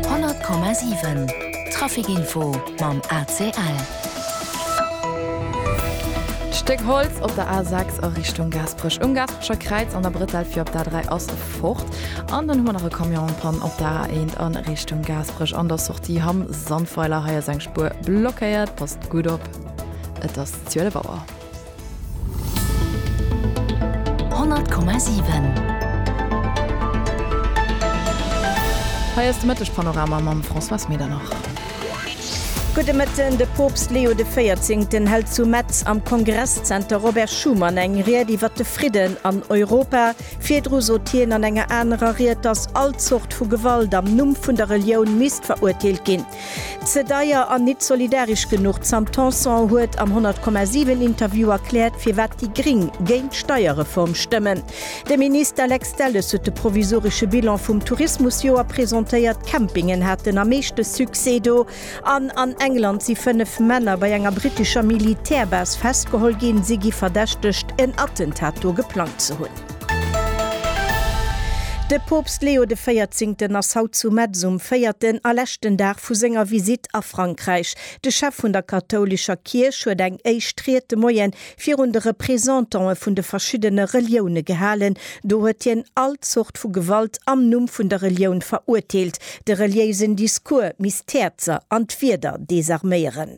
100,7 Trafikinfo mam ACL. D'Stéck Holz op der A6 a Richtung Gaasperech um Gaasperecher Kräiz an der Bretel fir op d'A3 ass fort. An dann hu mer nach e Camion an Panne op der A1 a Richtung Gaasperech an der Sortie Hamm Sandweiler. Hei ass eng Spuer blockéiert. Passt gutt op, et ass 12 Auer. Hei ass de Mëtteg-Panorama mam Françoise Medernach. Gudde Mëtten. De Poopst Leo de Véierzéngten hält zu Metz am Kongresszenter Robert Schuman eng Ried iwwer de Fridden an Europa. Virdru sot hien an enger anerer Ried, datt all Zort vu Gewalt am Numm vun der Relioun misst verurteelt ginn. Ze deier an nit solidaresch genuch. D'Sam Tanson huet am 100,7 Interview erkläert firwat déi Gring géint d'Steierreform stëmmen. De Minister Lex Delles huet de provisoresche Bilan vum Tourismusjoer presentéiert. D'Campingen haten am meeschte Succès do. An an England si 5 Männer bei enger brittescher Militärbase festgeholl ginn. Si gi verdächtegt en Attentat do geplangt ze hunn. De Poopst Leo de Véierzéngten ass haut zu Metz um véierten a leschten Dag vu senger Visitt a Frankräich. De Chef vun der kathoulescher Kierch huet eng éischt Ried de Moien virun de Représentantë vun de verschiddene Relioune gehalen. Do huet hien all Zort vu Gewalt am Numm vun der Relioun verurteelt. De reliéisen Discours misst d'Häerzer an d'Wierder desarméieren.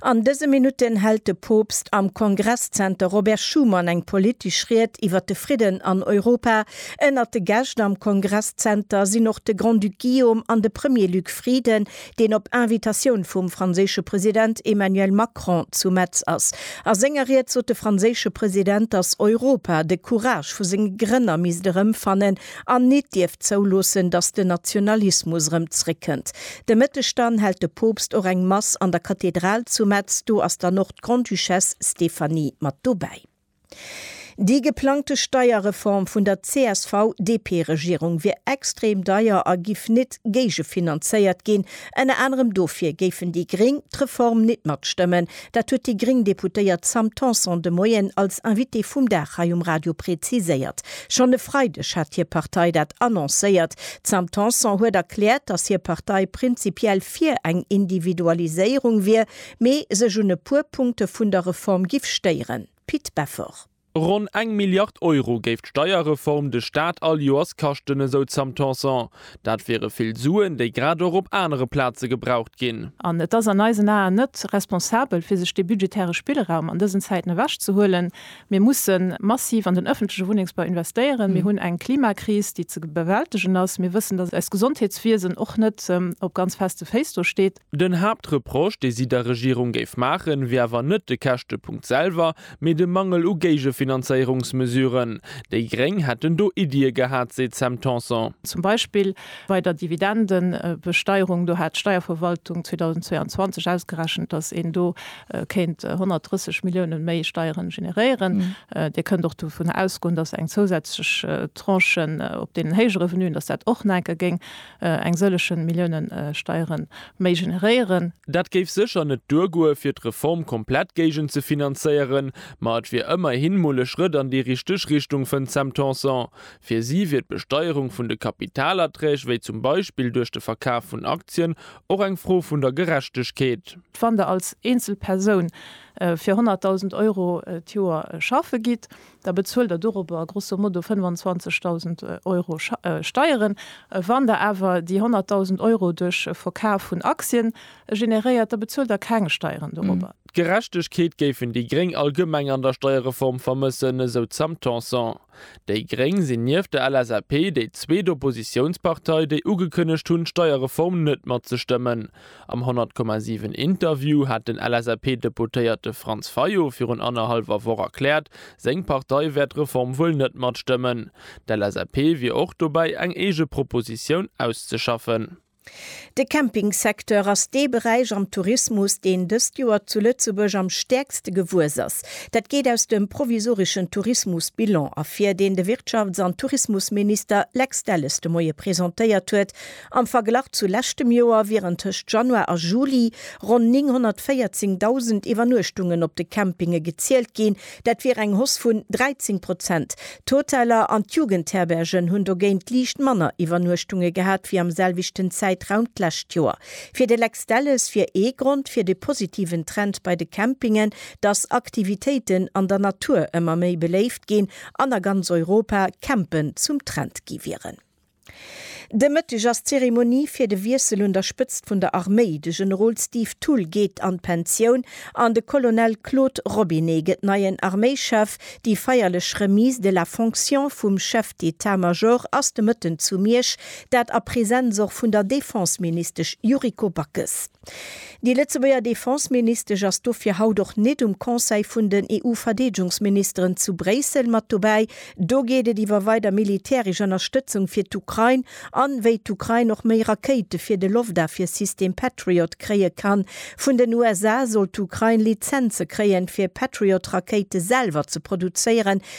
An dëse Minutten hält de Poopst am Kongresszenter Robert Schuman eng politesch Ried iwwer de Fridden an Europa. Ënnert de Gäscht am Kongresszenter sinn och de Grand-Duc Guillaume an de Premier Luc Frieden, deen op Invitatioun vum franséische President Emmanuel Macron zu Metz ass. A senger Ried sot de franséische President, datt Europa de Courage vu senge Grënner misst erëmfannen an nit dierf zouloossen, datt den Nationalismus erëm zréckkënnt. De Mëtteg dann hält de Poopst och eng Mass an der Kathedral zu Metz, do ass dann och d'Grande-Duchesse Stéphanie mat dobäi. Déi geplangte Steierreform vun der CSV-DP-Regierung wier extrem deier a giff nit géigefinanzéiert ginn. Ënner anerem dofir géifen déi Gréng d'Reform nit matstëmmen, Dat huet déi gréng Deputéiert Sam Tanson de Moien als Invitée vum Dag hei um Radio präziséiert. Schonn e Freideg hat hir Partei dat annoncéiert. D'Sam Tanson huet erkläert, datt hir Partei prinzipiell fir eng Individualiséierung wier, mee sech un e puer Punkte vun der Reform giff stéieren. Pit Beffort. Ronn eng Milliard Euro géif d'Steierreform de Staat all Joers kaschten, esou d'Sam Tanson. Dat wiere vill Suen, déi grad och op anere Plaze gebraucht ginn. An et ass an eisen Aen net responsabel, fir sech dee budgetäre Spillraum an dësen Zäiten ewech ze huelen. Mir musse massiv an den öffentleche Wunnengsbau investéieren. Mir hunn eng Klimakris, déi ze bewältegen ass. Mir wëssen, dass eist Gesondheetswiesen och net op ganz feste Féiss do steet. Den Haaptreproche, dee si der Regierung géif maachen, wier awer net de Käschtepunkt selwer, mee de Mangel u Géigefinanzéierungsmesuren. Déi Gréng hätten do Iddië gehat, seet d'Sam Tanson. Zum Beispill bei der Dividendebesteierung, do hat d'Steierverwaltung 2022 ausgerechent, datt een do kéint 130 Milliounen méi Steiere generéieren. Dir kënnt och dovun ausgoen, datt eng zousätzlech Tranche op deenen héije Revenuen, datt dat och nach enke géing eng sëllegen Milliounen Steieren méi generéieren. Dat géif sécher net duergoe fir d'Reform komplett géigenzefinanzéieren, ma et wier ëmmerhin mol e Schrëtt an déi richteg Richtung, fënnt d'Sam Tanson. Fir si wier d'Besteierung vun de Kapitalerträg, wéi zum Beispill duerch de Verkaf vun Aktien, och eng Fro vun der Gerechtegkeet. Wann Der als eenzel Persoun fir 100.000 Euro d'Joer schaffe gitt, da bezuelt der dorobber grosso modo 25.000 Euro Steieren. Wann der awer déi 100.000 Euro duerch e Verkaf vun Aktien generéiert, da bezuelt der keng Steieren dorobber. D'Gerechtegkeet géifen déi Gréng allgemeng an der Steierreform vermëssen, esou d'Sam Tanson. Déi Gréng sinn nieft der LSAP déi zweet Oppositiounspartei, déi ugekënnegt hunn, d'Steierreform net matzestëmmen. Am 100,7 Interview hat den LSAP-Deputéierte Franz Fayot virun annerhallwer Woch erkläert, seng Partei wäert d'Reform wuel net matstëmmen. D'LSAP wier och dobäi eng eege Propositioun auszeschaffen. De Campingsecteur ass dee Beräich am Tourismus, deen dëst Joer zu Lëtzebuerg am stäerkste gewuess ass. Dat geet aus dem provisoreschen Tourismusbilan ervir, deen de Wirtschafts an Tourismusminister Lex Delles de Moie presentéiert huet. Am Verglach zu leschtem Joer wieren tëscht Januar a Juli ronn 914.000 Iwwernuechtungen op de Campinge gezielt ginn, dat wier eng Hoss vun 13 Prozent. D'Hoteller an d'Jugendherbergen hunn dogéint liicht manner Iwwernuechtunge gehat wéi am selwechten Zäitraum d'lescht Joer. Fir de Lex Delles wier ee Grond fir de positiven Trend bei de Campingen, dass Aktivitéiten an der Natur ëmmer méi beléift ginn an a ganz Europa Campen zum Trend gi wieren. De Mëtteg ass d'Zeremonie fir de Wiessel un der Spëtzt vun der Arméi. De Generol Steve Thull geet an d'Pensioun an de Colonel Claude Robinet gëtt neien Arméichef. Déi feierlech Remise de la fonction vum Chef d'État-Major ass de Mëtten zu Miersch, dat a Presenz och vun der Defenseministesch Yuriko Backes. Déi Lëtzebuerger Defenseministesch ass dofir haut och nit um Conseil vun den EU-Verdeedgungsministeren zu Bréissel mat dobäi. Do geet et iwwer weider militäresch Ënnerstëtzung fir d'Ukrain an wéi d'Ukrain och méi Rakéite fir de Loftafwiersystem Patriot kréie kann. Vun den USA soll d'Ukrain Lizenze kréien, fir Patriot-Rakéite selwer ze produzéieren,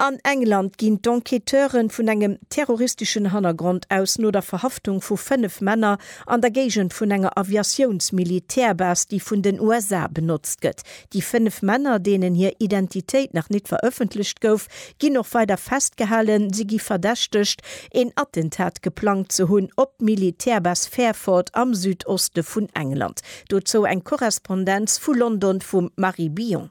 An England ginn d'Enquêteuren vun engem terroristeschen Hannergrond aus no der Verhaftung vu 5 Männer an der Géigend vun enger Aviatiouns-Militärbase, déi vun den USA benotzt gëtt. Déi 5 Männer, deenen hir Identitéit nach nit verëffentlecht gouf, ginn och weider festgehalen. Si gi verdächtegt, een Attentat geplangt ze hunn op d'Militärbase Fairford am Südoste vun England. Dozou eng Korrespondenz vu London vum Marie Billon.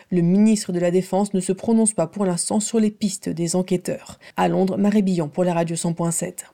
Le ministre de la Défense ne se prononce pas pour l'instant sur les pistes des enquêteurs à Londres, Marie Billon pour la Radio 100 point 7.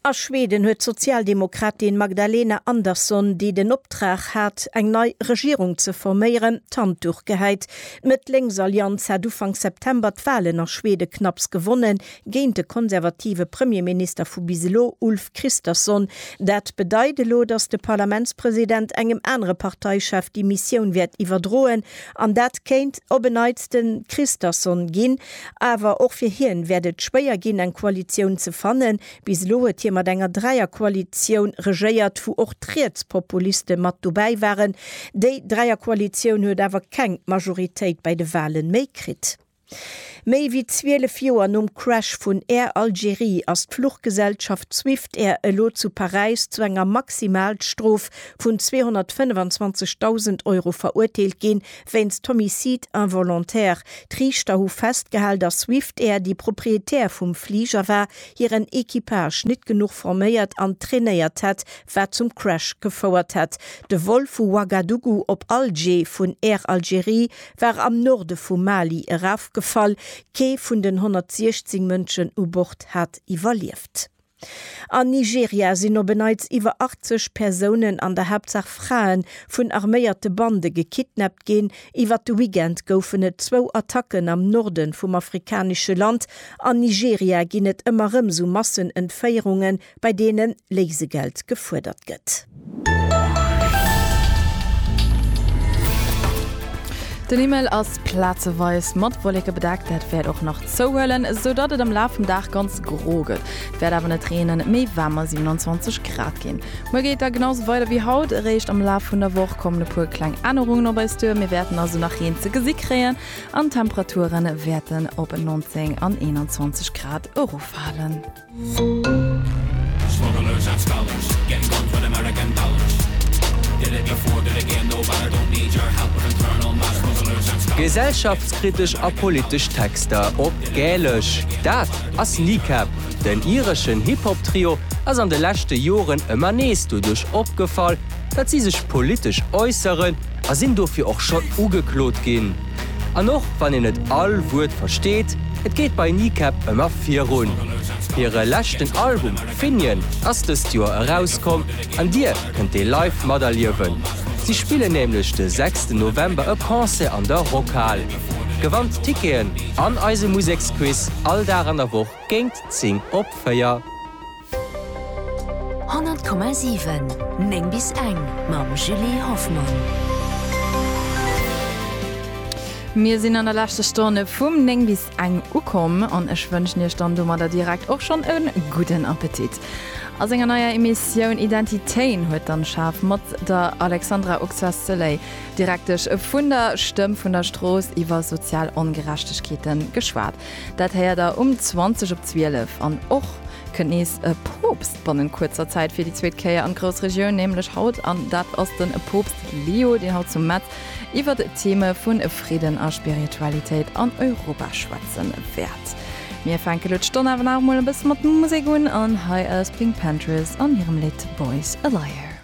A Schweden huet d'Sozialdemokratin Magdalena Andersson, déi den Optrag hat, eng nei Regierung ze forméieren, d'Handduch gehäit. D'Mëtt-Lénks-Allianz hat Ufank September d'Walen a Schweden knapps gewonnen. géint de konservative Premierminister vu bis elo Ulf Kristersson. Dat bedeit elo, datt de Parlamentspresident engem anere Parteichef déi Missioun wäert iwwerdroen an dat kéint op en Neits de Kristersson ginn. Awer och fir hien wäert et schwéier ginn eng Koalitioun ze fannen. Bis elo huet hie mat enger Dräierkoalitioun regéiert, wou och d'Rietspopuliste mat dobäi waren. Déi Dräierkoalitioun huet awer keng Majoritéit bei de Wale méi kritt. Méi wéi 12 Joer nom Crash vun Air Algérie ass d'Fluchgesellschaft Swiftair elo zu Paräis zu enger Maximalstrof vun 225.000 Euro verurteelt ginn, wéinst Homicide involontaire. D'Riichter hu festgehal, datt Swiftair, déi Proprietär vum Fliger war, hiren Equipage net genuch forméiert an trainéiert hätt, wat zum Crash gefouert hätt. De Vol vu Ouagadougou op Alger vun Air Algérie war am Norde vum Mali erafgefall, kee vun den 116 Mënschen u Bord hat iwwerlieft. An Nigeria sinn op en Neits iwwer 80 Persounen, an der Haaptsaach Fraen, vun arméierte Bande gekidnappt ginn. Iwwert de Weekend goufen et zwou Attacken am Norde vum afrikanesche Land. An Nigeria ginn et ëmmer erëm sou Massenentféierungen, bei deene Léisegeld gefuerdert gëtt. Den Himmel ass plazeweis mat Wolleke bedeckt, dat wäert och nach zouhuelen, sou datt et am Laf vum Dag ganz gro gëtt. Et wäert awer net reenen, méi waarmer 27 Grad ginn. Muer geet et da genau sou weider wéi haut. Eréischt am Laf vun der Woch kommen e puer kleng Ännerungen op eis duer, mir wäerten also nach Reen ze gesi kréien an d'Temperature wäerten op 19 an 21 Grad erofhalen. Gesellschaftskritesch a politesch Texter op Gälesch. Dat ass Kneecap. Den ireschen Hip-Hop-Trio ass an de leschte Joren ëmmer nees doduerch opgefall, datt si sech politesch äusseren a sinn dofir och schonn ugeklot ginn. An och wann een net all Wuert versteet, et geet bei Kneecap ëmmer virun. Hire leschten Album Finian ass dëst Joer erauskomm an Dir kënnt dee live materliewen. Si spillen nämlech de sechsten November e Concert an der Rockhal. Gewannt d'Ticketen an eise Museksquiz all Dag an der Woch géingt 10 op 4. 100,7 9 bis eng mam Julie Hoffmann. Mir sinn an der leschter Stonn vum 9 bis eng ukomm an ech wënschen iech dann domadder direkt och schonn e gudden Appetit. A senger neier Emissioun Identitéen huet dann schaarf mat der Alexandra Oxacelay, Direktesch vun der Stëmm vun der Strooss, iwwer sozial Ongerechtegkeete geschwat. Dat héiert der um 20 op 12. An och kënnt nees e Poopst bannent kuerzer Zäit fir déi zweet Kéier an d'grouss Regioun, nämlech haut. An dat ass den Poopst Leo, deen haut zu Metz iwwert Theme vu Fridden a Spiritualitéit an Europa schwätzen wäert. Mir fänken elo d'Stonn awer nach emol e bësse mat Musek un an hei ass Pink Panthers an hirem Lidd Boys a Liar.